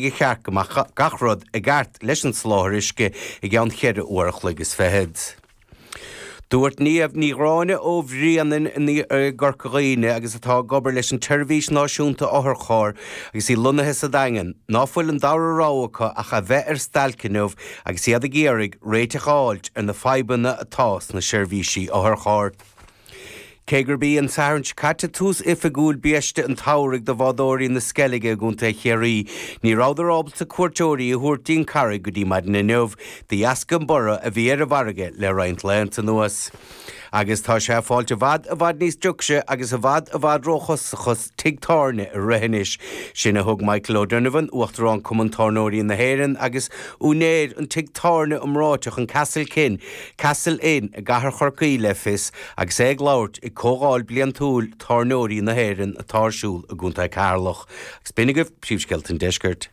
go cheart go mbeadh gach rud i gceart leis an soláthar uisce i gceann cheithre uair a chloig is fichead. Dúirt Niamh Ní Ghráinne ó Bhréanainn i gCorca Dhuibhne agus atá ag obair leis an tSeirbhís Náisiúnta Otharcharr agus í lonnaithe sa Daingean ná fuil an dara rogha acu ach a bheith ar stailc inniu agus iad ag iarraidh réiteach a fháilt ar na fadhbanna atá sna seirbhísí otharcharr. Cé gurb í an Satharn seo caite tús oifigiúil biaiste an tsamhraidh do bhádóirí na Sceilge i gContae Chiarraí, ní rabhadar ábalta cuairteoirí a thabhairt dtí'n Charraig go dtí maidin inniu de dheasca an borradh a bhí ar an bhfarraige le roinnt laethanta anuas. Agus tá sé ag fáilt i bhfad i bhfad níos deacra agus i bhfad i bhfad ró-chostasach tigh tábhairne a rith anois. Sin a thug Michael O'Donovan, Uachtarán Cumann Tábhairneoirí na hÉireann agus úinéir an tigh tábhairne iomráiteach an Castle Kin, Castle Inn, i gcathair Chorcaí le fios agus é ag labhairt ag comhdháil bliantúil tábhairneoirí na hÉireann atá ar siúl i gContae Ceatharlach. Agus b'in agaibh príomhscéalta an deiscirt.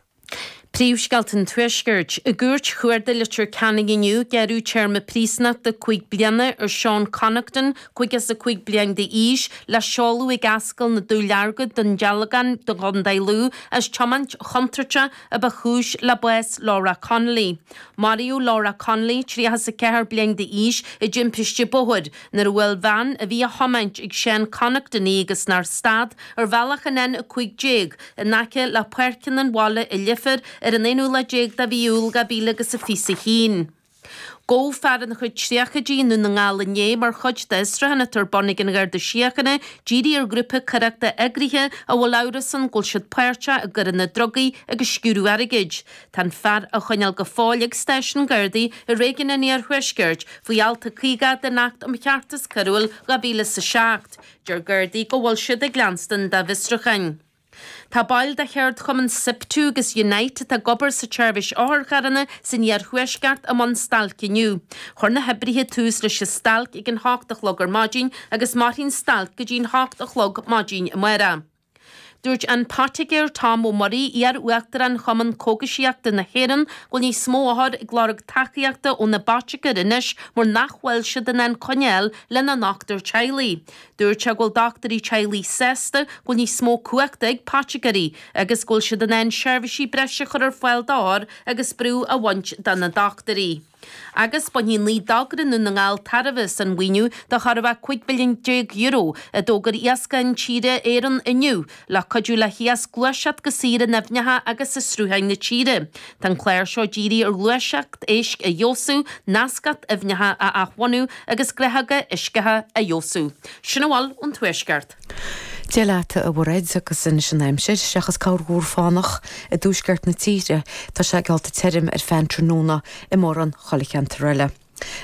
Príomhscéalta an Tuaiscirt. I gCúirt Chuarda Leitir Ceanainn inniu, gearradh téarma príosnachta cúig bliana ar Sean Connaughton, caoga is a cúig bliain d'aois, le seoladh ag Ascaill na Dúleargaí, Dún Dealgan, i gContae Lú, as tiomáint chontúirteach a ba chúis le bás Laura Connolly. Maraíodh Laura Connolly, tríocha is a ceathair bliain d'aois, i dtimpiste bóthair, nuair a bhuail veain a bhí á thiomáint ag Sean Connaughton í agus nár stad, ar bhealach an N15, in aice le Páirceanna an Bhaile i Leifear ar an aonú lá déag de mhí Iúil dhá mhíle agus a fiche is a haon. Gabhadh fear ina chuid tríochaidí i nDún na nGall inné mar chuid d'fhiosrúchán atá ar bun ag an Gharda Síochána dírithe ar ghrúpa coireachta eagraithe a bhfuil amhras ann go bhfuil siad páirteach i gcoireanna drugaí agus sciúradh airgid. Tá an fear á choinneáil go fóill ag stáisiún Gardaí i réigiún an iarthuaiscirt faoi alt a caoga den Acht um Cheartas Coiriúil dhá mhíle is a seacht. Deir Gardaí go bhfuil siad ag leanstan dá bhfiosrúcháin. Tá baill de cheardchumann Siptu agus Unite atá ag obair sa tseirbhís otharcharranna san iarthuaisceart i mbun stailce inniu. Chuir na hoibrithe tús leis an stailc ag an hocht a chlog ar maidin agus mairfidh an stailc go dtí an hocht a chlog maidin amárach. Dúirt an poitigéir Tom Murray, iar-Uachtarán Chumann Cógaisíochta na hÉireann, go bhfuil níos mó othar ag lorg tacaíochta óna bpoitigéir anois mar nach bhfuil siad in ann coinne a fháil lena ndochtúir teaghlaigh. Dúirt sé go bhfuil dochtúirí teaghlaigh sásta go bhfuil níos mó cumhachta ag poitigéirí agus go bhfuil siad in ann seirbhísí breise a chur ar fáil d'othair agus brú a bhaint de na dochtúirí. Agus bainfidh naoi dtogra i nDún na nGall tairbhe as an mhaoiniú de chóir a bheith €15 milliún a d'fhógair Iascach Intíre Éireann inniu, le cuidiú le hiasc gluaiseacht go saor in aibhneacha agus i srutháin na tíre. Tá an clár seo dírithe ar ghluaiseacht éisc a fheabhsú, nascacht aibhneacha a athbhunú agus gnáthóga uisceacha a fheabhsú. Sin a bhfuil ón Tuaisceart. Dia leat, a Mhairéad, agus anois an aimsir, seachas corrmhúr fánach i dtuaisceart na tíre, tá sé geallta tirim ar feadh an tráthnóna i mórán chuile cheantar eile.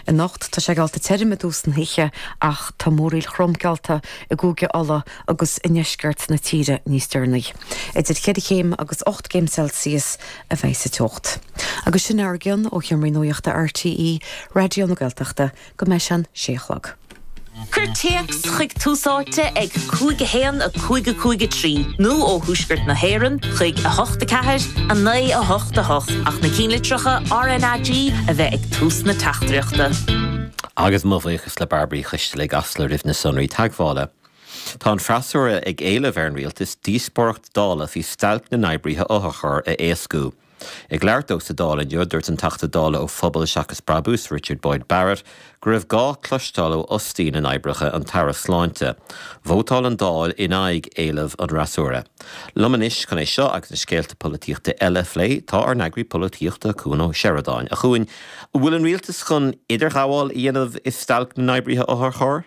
Anocht, tá sé geallta tirim i dtús na hoíche, ach tá múraíl throm geallta i gCúige Uladh agus i ndeisceart na tíre níos deireanaí. Idir cheithre chéim agus ocht gcéim Celsius a bheidh sa teocht. Agus sin a raibh againn ó sheomraí nuachta RTÉ Raidió na Gaeltachta. go mbeidh sé a sé a chlog. Cuir téacs chuig Tús Áite ag 5 1 5 5 3 nó ó Thuaisceart na hÉireann chuig 8 4 9 8 8 ach na cinnlitreacha RNAG a bheith ag tús na teachtaireachta. Agus mo bhuíochas le Bairbre i gCasla. Roimh na sonraí teagmhála. Tá an freasúra ag éileamh ar an Rialtas díospóireacht Dála faoi stailc na n-oibrithe otharchairr a éascú. Ag labhairt dó sa Dáil inniu, dúirt an Teachta Dála ó Phobal Seachas Brabús, Richard Boyd Barrett, go raibh gá cloisteáil ó fhostaí na n-oibrithe, an tAire Sláinte. Vótáil an Dáil in aghaidh éileamh an fhreasúra. Liom anois chun é seo agus na scéalta polaitíochta eile a phlé tá ár n-eagraí polaitíochta Cuan Ó Seireadáin, a Chuain, an bhfuil an rialtas chun idirghabháil a dhéanamh i stailc na n-oibrithe otharchairr?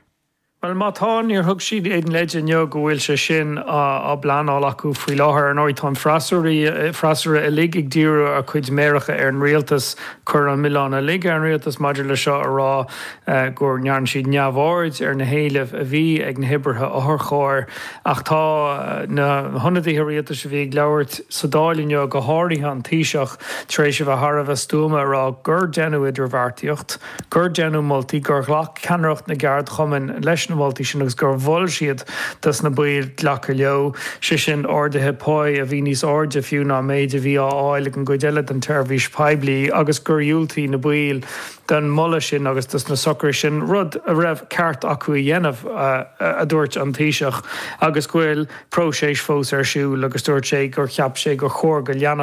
Bhuel, má tá, níor thug siad aon leid inniu go bhfuil sé sin á phleanáil acu faoi láthair. Ar ndóigh, tá an freasúra uilig ag díriú a gcuid méaracha ar an rialtas. ag cur an milleán uilig ar an rialtas maidir le seo a rá go ndearna siad neamhaird ar na héilimh a bhí ag na hoibrithe otharchairr. Ach tá na hionadaithe rialtais a bhí ag labhairt sa Dáil inniu, go háirithe an Taoiseach, tar éis a bheith thar a bheith stuama a rá gur deineadh idirbheartaíocht. gur deineadh moltaí, gur ghlac ceannaireacht na gceardchumann leis na moltaí sin agus gur mhol siad dos na baill glacadh leo, sé sin, arduithe páí a bhí níos airde fiú ná an méid a bhí á fháil ag an gcuid eile den tseirbhís poiblí agus gur dhiúltaigh na baill don mholadh sin agus dos na socruithe sin, rud a raibh ceart acu a dhéanamh, a dúirt an Taoiseach, agus go bhfuil próiseas fós ar siúl agus dúirt sé gur cheap sé gur chóir go leanfadh.